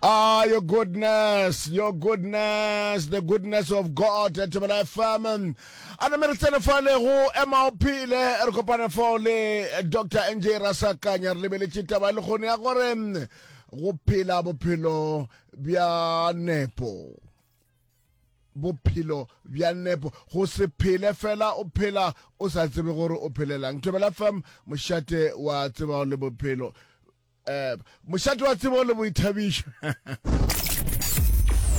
Ah, your goodness, your goodness, the goodness of God, Thobela FM. A name re tsene fale go ema o phile, re kopane fao le Dr. NJ Rasakanya, re lebeletše taba le kgone ya gore go phela bophelo bja nepo bophelo bja nepo go se phele fela o phela o sa tsebe gore o phelelang thobela fam mošate wa tseba le bophelo Ema, mošate wa tsebo le boithabišo.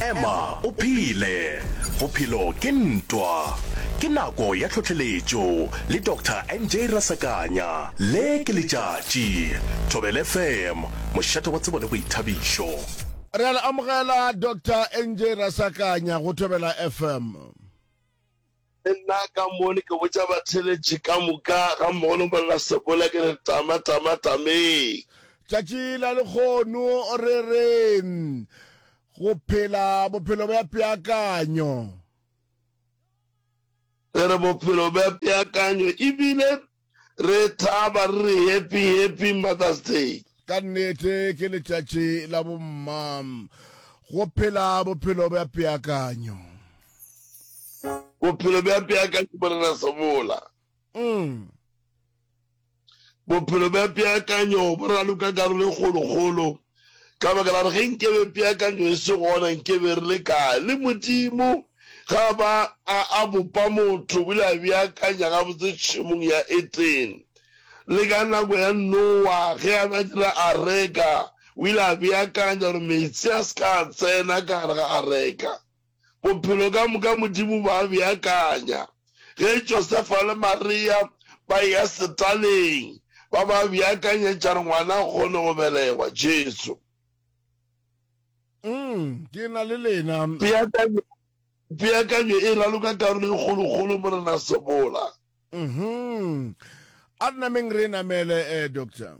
Ema, o phele. Bophelo ke ntwa. Ke nako ya tlhohleletšo le Doctor NJ Rasakanya. Le ke letšatši. Thobel FM, mošate wa tsebo le boithabišo. Re a le amogela Doctor NJ Rasakanya go Thobela FM. Le nna ka mo ne ke botša batheeletši ka moka, gammogo le Morena-Sebola, ke re, Tama, tama, tameng! Tšatši la lehono re re go phela bophelo bja peakanyo. Re re bophelo bja peakanyo ebile Re thaba re re happy happy Mother's Day. Ka nnete ke letšatši la bomma. Go phela bophelo bja peakanyo. Bophelo bja peakanyo Morena Sebola. Mm. Bophelo bja peakanyo bo raloka karolo e kgolokgolo Ka baka la gore ge nkebe peakanyo e se gona, nkebe re le kae? Le Modimo, ge a ba a, a bopa motho, o ile a beakanya gabotse tšhemong ya Etene. Le ka nako ya Nowa, ge a be a dira areka, o ile a beakanya gore meetse a se ka a tsena ka gare ga areka. Bophelo ka moka Modimo ba a beakanya. Ge Josefa le Maria ba eya setaleng, ba ba beakanyetša re ngwana a kgone go belegwa, Jesu. Umm, ke na le lena. Peakanyo, peakanyo e raloka karolo e kgolokgolo, Morena Sebola. Uhum. A re nameng re e namele, eh, Doctor.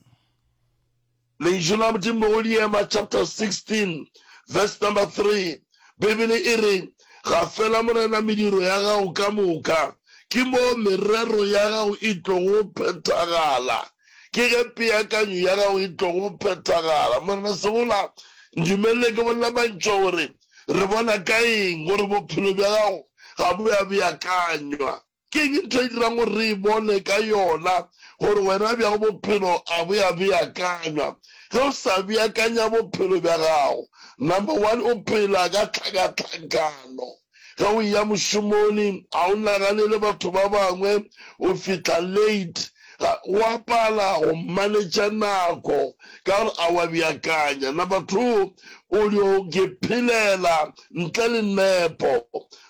Lentšu la Modimo go Diema chapter 16 verse number 3, Beibele e re, Gafela Morena mediro ya gago ka moka, ke moo merero ya gago e tlogo phethagala, ke ge peakanyo ya gago e tlogo phethagala. Morena, segola, ndumelele ke bolela mantšwa gore re bona ka eng gore bophelo bja gago ga bo ya beakanywa. Ke'ng ntho e dirang gore re e bone ka yona gore wena bja bophelo a bo ya beakanywa? Ge o sa beakanya bophelo bja gago, number one, o phela ka tlhakatlhakano. Ge o eya mošomoni, ga o naganele batho ba bangwe, o fihla late. Ga o a pala go manetša nako ka gore a o a beakanya. Number two, o dio ke phelela ntle le nepo.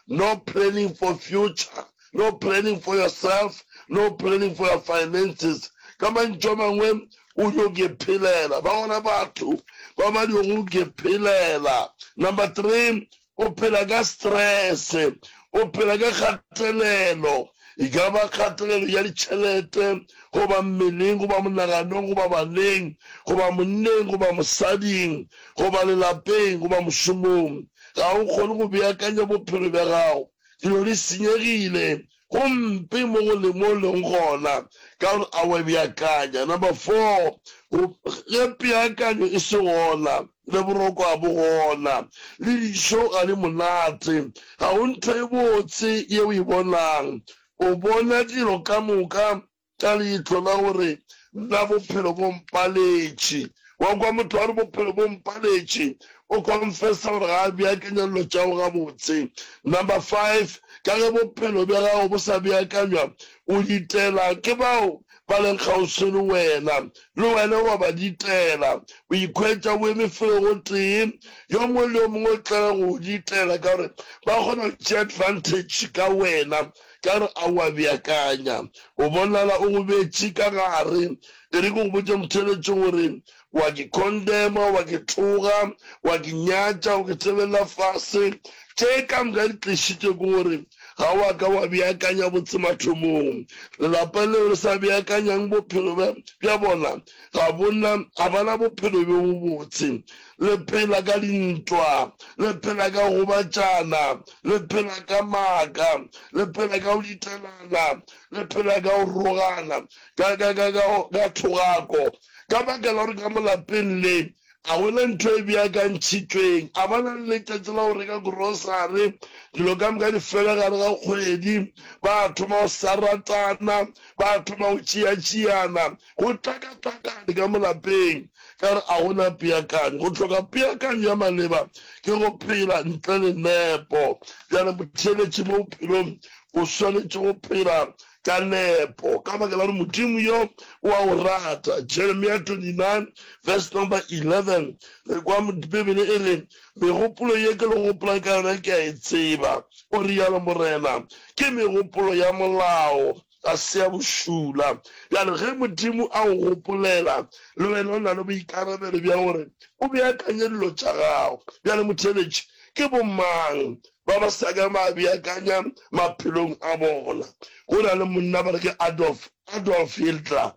no planning for future, no planning for yourself, no planning for your finances. Ka mantšu a mangwe o dio ke phelela, ba gona batho ba ba dio go ke phelela. Number three, o phela ka stress, o phela ka kgatelelo. e ka ba kgatelelo ya ditšhelete, goba mmeleng, goba monaganong, goba baneng, goba monneng, goba mosading, goba lelapeng, goba mošomong. Ga o kgone go beakanya bophelo bja gago. Dilo di senyegile. Go mpe mo go le mo o lego gona, ka gore a o a beakanya. Number four, go, ge peakanyo e se gona, Le boroko a bo gona, le dijo ga di monate. Ga go ntho e botse ye o e bonang. O bona dilo ka moka ka leihlo la gore, Nna bophelo bo mpaletše. Wa kwa motho a re, Bophelo bo mpaletše. O confessa gore ga a beakanya dilo tša gagwe gabotse. Number five, ka ge bophelo bja gago bo sa beakanywa, o ditela ke bao ba leng kgauswi le wena, le wena wa ba ditela, o ikhwetša o eme felo gotee, yo mongwe le yo mongwe o tlala go go ditela ka gore ba kgona go tšea advantage ka wena ka gore a o a beakanya. O bonala o go beetše ka gare. E re ke go botše Mtheletše gore wa ke condemna goba ke tloga, wa ke nyatša, wa ke tsebelela fase. Tše ka moka di tlišitšwe ke gore ga wa ka wa beakanya botse mathomong. Lelapa leo le sa beakanyang bophelo bja, bja bona, ga bona, ga ba na bophelo bjo bobotse. Le phela ka dintwa, le phela ka go gobatšana, le phela ka maaka, le phela ka go ditelana, le phela ka go rogana, ka, ka, ka, ka, ka thogako, Ka baka la gore ka mo lapeng le ga go na ntho e beakantšhitšweng, a ba na le letšatši la go reka grocery, dilo ka moka di fela gare ga kgwedi, ba thoma go sa ratana, ba thoma go tšeatšeana, go tlakatlakane ka mo lapeng ka gore ga go na peakanyo. Go hloka peakanyo ya maleba ke go phela ntle le nepo. Bjale motheeletši mo bophelong o swanetše go phela ka nepo, ka baka la gore Modimo yo o a o rata. Jeremia 29 verse number 11, re kwa Bibele e re, Megopolo ye ke le gopolang ka yona ke a e tseba, o realo Morena, ke megopolo ya molao, ga se ya bošula. Bjale ge Modimo a o gopolela, le wena o na le boikarabelo bja gore o beakanye dilo tša gago. Bjale, motheletši, ke bomang ba ba sa ka ba beakanya maphelong a bona. Go na le monna ba re ke Adolf, Adolf Hiltler,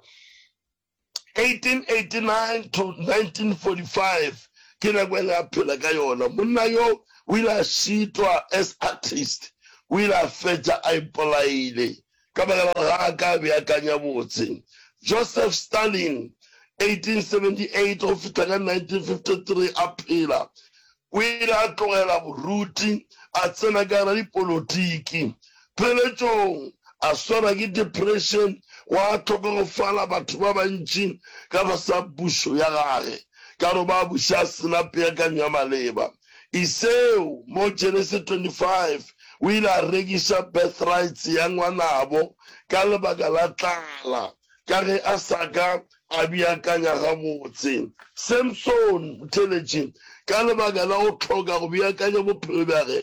1889-1945, ke nako e ne a phela ka yona. Monna yo o ile a šitwa as artist, o ile a fetša a ipolaile. ka baka la gore ga a ka a beakanya botse. Joseph Stalin, 1878-1953, a phela, o ile a tlogela boruti a tsena ka gare dipolotiki. Pheletšong a swarwa ke depression, gwa hlokogofala batho ba bantši ka fase ga pušo ya gage ka gore ba buša a se na peakanyo ya maleba. I seo, mo Genesis 25, o ile a rekiša birthrights ya ngwanabo ka lebaka la tlala, ka ge a sa ka a beakanya gabotse. Samson o theletše ka lebaka la go hloka go beakanya bophelo bjage,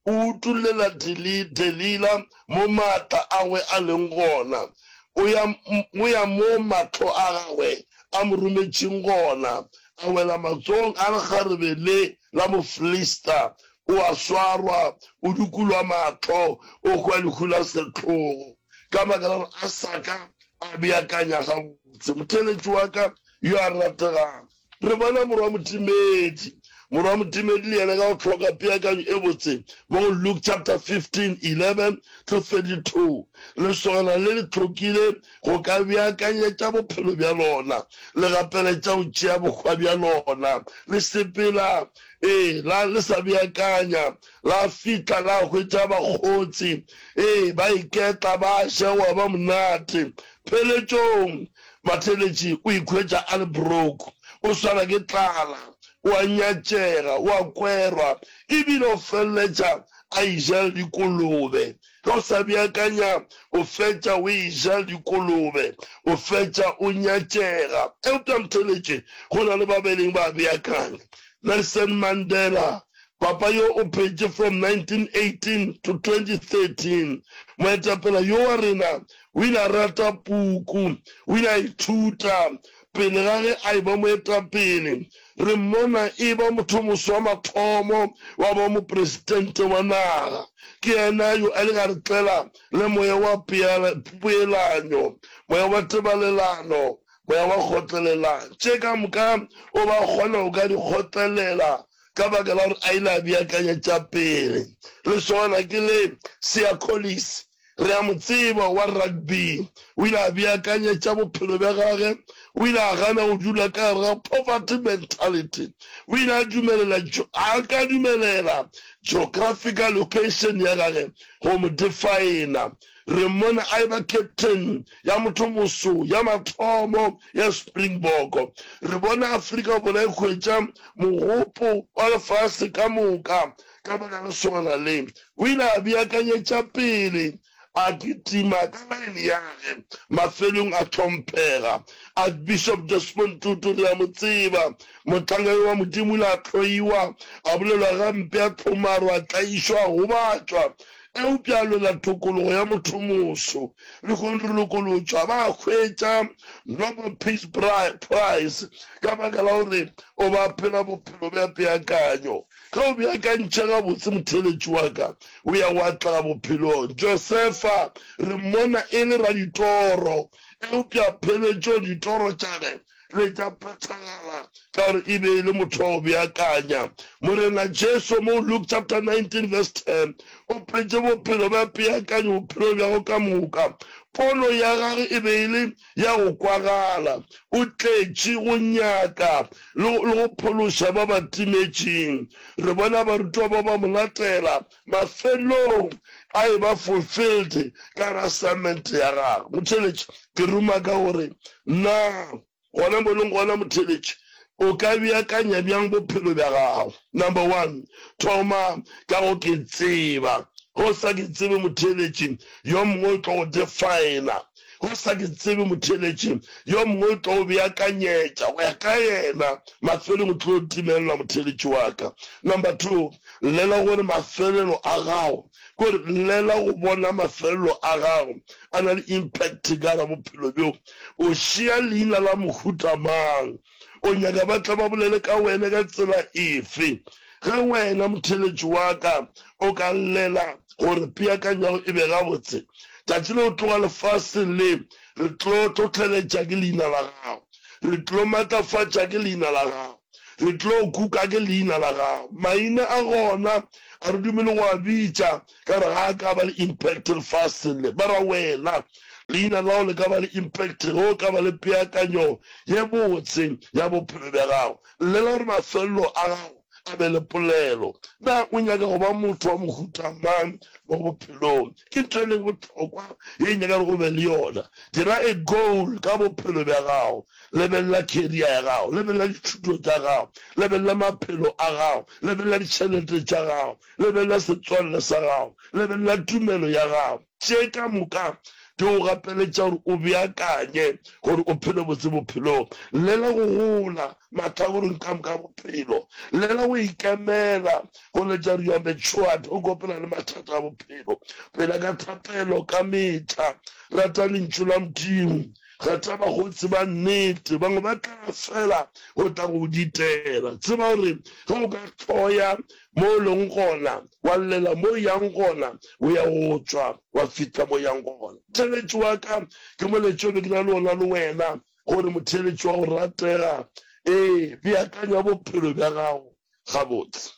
o utullela Delila mo maatla agwe a leng gona, o ya mo mahlo a gagwe a mo rometšeng gona. a wela matsogong a lekgarebe le la Mofilista, o a swarwa, o dukulwa mahlo, o hwa lehu la sehlogo, ka baka la gore a sa ka a beakanya gabotse. Motheeletši wa ka yo a rategago, re bona Morwa Motimedi. Morwa Motimedi le yena ka go hloka peakanyo e botse mo go Luke chapter 15, 11-32, lesogana le le hlokile go ka beakanyetša bophelo bja lona, le gapeletša go tšea bohwa bja lona, le sepela, ee, la le sa beakanya, la fihla la hwetša bakgotsi, ee, ba iketla, ba ja, gwa ba monate. Pheletšong, matheletši o ikhwetša a le broke, o swara ke tlala, o a nyatšega, o a kwerwa, ebile o feleletša a ijela dikolobe. Ge o sa beakanya, o fetša o eja dikolobe, o fetša o nyatšega. Eupša ntheeletše, go na le ba ba ileng ba beakanya. Nelson Mandela, papa yo o phetše from 1918 to 2013, moetapele yo wa rena, o ile a rata puku, o ile a ithuta Pele ga ge a eba moetapele, re mmona e ba mothomos wa mathomo wa ba mopresitente wa naga. Ke yena yo a ileng a re tlela le moya wa peelanyo, moya wa tebalelano, moya wa kgotlelela. Tše ka moka o ba kgona go ka di kgotlelela ka baka la gore a ile a beakanya tša pele. Lesogana ke le, Seacolis, Re a mo tseba, wa rugby. O ile a beakanyetša bophelo bja gage. O ile a gana go dula ka gare ga poverty mentality. O ile a dumelela, a ka dumelela geographical location ya gage go mo defina. Re mmone a eba captain ya mothomoso ya mathomo ya Springbok. Re bone Afrika Borwa e hwetša mogopo wa lefase ka moka ka baka le lesogana le, o ile a beakanyetša pele, a kitima ka line yage. Mafelong a hlomphega Archbishop Desmond Tutu, re a mo tseba, mohlanga yo wa Modimo, o ile a hloiwa, a bolelwa gampe, a hlomarwa, a tlaišwa, a gobatšwa. Eupša a lwela thokologo ya mothomoso. Lehono re lokolotšwa, ba hwetša Nobel Peace Prize ka baka la gore o be a phela bophelo bja peakanyo. Ge o beakantšha gabotse, motheeletši wa ka o ya wa tla bophelong. Josefa re mmona e le raditoro, eupša pheletšong ditoro tša ge le tša phethagala ka gore e be e le motho wa go beakanya. Morena Jesu mo Luke chapter 19 verse 10 o petše bophelo bja peakanyo bophelong bja go ka moka. Pono ya gagwe e be e le ya go kwagala, o tletše go nyaka le go phološa ba ba timetšeng. Re bona barutwa ba ba mo latela, mafelelong a eba fulfilled ka gare assignment ya gagwe. Motheeletši, ke ruma ka gore, Na gona mo leng gona, motheeletši, o ka beakanya bjang bophelo bja gago? Number one, thoma ka go ke tseba. Ge o sa ke tsebe, motheeletši, yo mongwe o tlo go definer. o sa ke tsebe motheeletši yo mongwe o tlo o beakanyetša go ya ka yena mafelong o tlo timelela motheeletši wa ka number two llela gore mafelelo a gago kore llela go bona mafelelo a gago a na le impact ka ra bophelo bjo o šea leina la mohuta mang O nyaka ba tle ba bolele ka wena ka tsela efe? Ge wena, motheeletši wa ka, o ka llela gore peakanyo ya go e be gabotse, tšatši le o tloga lefaseng le, re tlo hlohleletša ke Leina la Gago. Re tlo matlafatša ke Leina la Gago. Re tlo kuka ke Leina la Gago. Maina a gona a re dumele go a bitša, Ka re ga a ka ba le impact lefaseng le, mara wena leina la gago le ka ba le impact ge o ka ba le peakanyo ye botse ya bophelo bja gago. Llela gore mafelelo a gago a be le polelo. Na o nyaka go ba motho wa mohuta mang mo bophelong? Ke ntho e leng bohlokwa ye e nyaka gore o be le yona. Dira a goal ka bophelo bja gago. Lebelela career ya gago, lebelela dithuto tša gago, lebelela maphelo a gago, lebelela ditšhelete tša gago, Lebelela setswalle sa gago. Lebelela tumelo ya gago. Tše ka moka di go gapeletša gore o beakanye gore o phele botse bophelong. Llela go gola mahlakoreng ka moka a bophelo. Llela go ikemela go letša gore you are matured o kopela le mathata a bophelo. Phela ka thapelo ka mehla. Rata Lentšu la Modimo. Kgetha bakgotsi ba nnete. Bangwe ba tla fela go tla go go ditela. Tseba gore ge o ka hloya mo o leng gona, wa llela mo o yang gona, o ya o tšwa, wa fihla mo o yang gona. Motheeletši wa ka ke moletša o be ke na le wona le wena, gore motheeletši wa go ratega, ee, beakanya bophelo bja gago gabotse.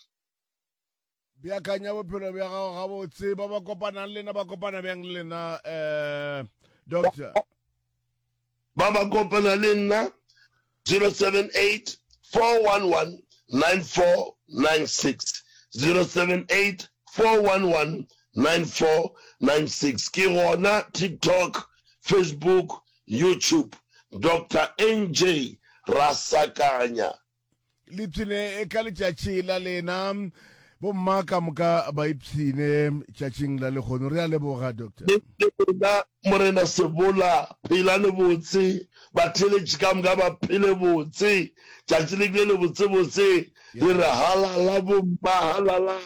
Beakanya bophelo bja gago gabotse. Ba ba kopanang le nna ba kopana bjang le nna, Doctor? ba ba kopana le nna, 0784119496, 0784119496, ke gona TikTok, Facebook, YouTube, Doctor NJ Rasakanya. Lipshine ka letšatši la lena. Bomma ka moka ba ipshine tšatšing la lehono. Re a leboga, Doctor. Le lena, Morena Sebola. Phelane botse, batheeletši ka moka ba phele botse. Tšatši le bile lebotsebotse. Re re, Halala, bomma, halala!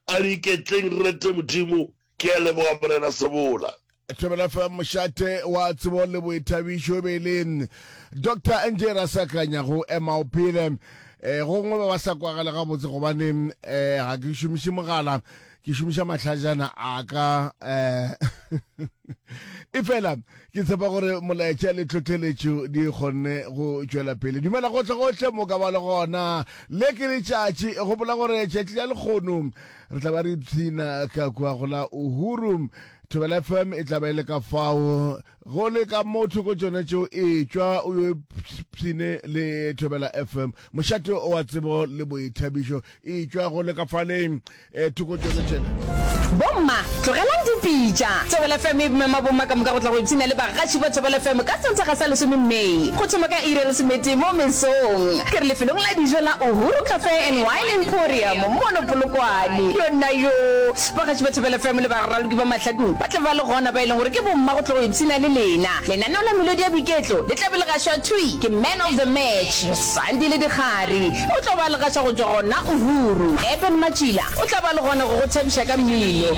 A re iketleng, re rete Modimo. Ke a leboga Morena Sebola. Thobela FM mošate wa tsebo le boithabišo e be e le Dr NJ Rasakanya go ema o phele eh, gongwe ba ba sa kwagale gabotse gobane eh, ga ke šomiše mogala ke šomiša mahlajana a ka eh, e fela ke tshepa gore molaetša le tlhotlheletšo di kgonne go tšwela pele dumela gotlhe gotlhe mo ka ba le gona le ke letšatši gopola gore tšatši la lekgono re tla ba re ipshina ka kua go la uhuru thobela fm e tla ba e le ka fao go le ka motho ko tsone tšeo etšwa o yo pshine le thobela fm mošate wa tsebo le boithabišo etšwa go le ka faleng um thoko tsone tšena bomma Tlogelang dipitša. Thobela FM e mema bomma ka moka go tla go ipshina le bagatši ba Thobela FM ka Sontaga sa lesome May, go thoma ka iri ya lesometee mo mesong. Ke re lefelong la dijo la Uhuru Cafe and Wine Emporium mono Polokwane. Yonnayoo! Bagatši ba Thobela FM le baraloki ba mahlakong ba tla ba le gona, ba e leng gore ke bomma go tla go ipshina le lena. Lenaneo la melodi ya boiketlo le tla be le gašwa thwi ke Man of the Match, Sandile Dikgari. O tlo ba le gaša go tšwa gona o ruru. Eben Matšila o tla ba le gona go go thabiša ka mmino.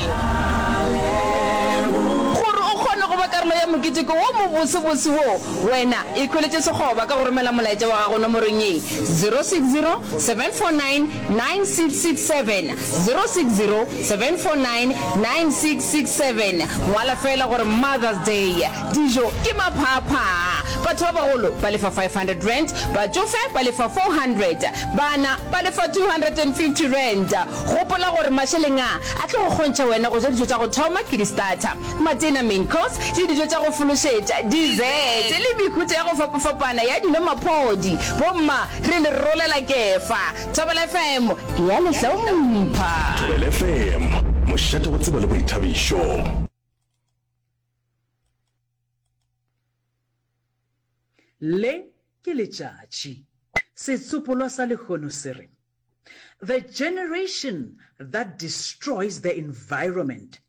Gore o kgone go ba karolo ya mokete ko wo mobosebose wo, wena ikhweletše sekgoba ka go romela molaetša wa gago nomorong ye, 0607499667, 0607499667. Ngwala feela gore Mother's Day. Dijo ke maphaaphaa. Batho ba bagolo ba lefa R500, batšofe ba lefa R400, bana ba lefa R250. Gopola gore mašeleng a, a tlo go kgontšha wena go ja dijo tša go thoma ke di-starter, matena, main course, le dijo tša go fološetša, dessert, le mehuta ya go fapafapana ya dino, maphodi. Bomma, re le rolela kefa. Thobela FM e a le hlompha. Thobela FM, mošate wa tsebo le boithabišo. Le ke letšatši. Setsopolwa sa lehono se re, The generation that destroys the environment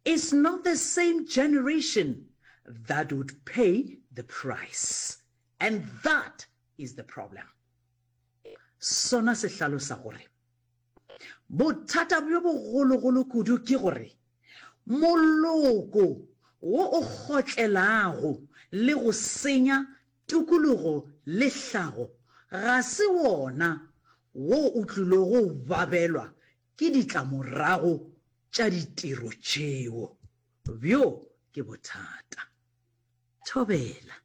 is not the same generation that would pay the price. And that is the problem. Sona se hlalosa gore, Bothata bjo bogologolo kudu ke gore moloko wo o kgotlelago le go senya tukulugo le hlago ga se wona wo o tlilo go babelwa ke ditlamorago tša ditiro tšeo. Bjo ke bothata. Thobela.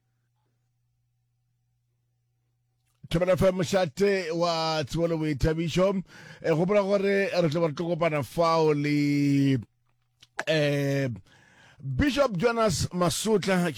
thobela fa mošate wa tsebo le boithabišo um gopola gore re tlo ba re tlo kopana fao le um bishop jonas masotla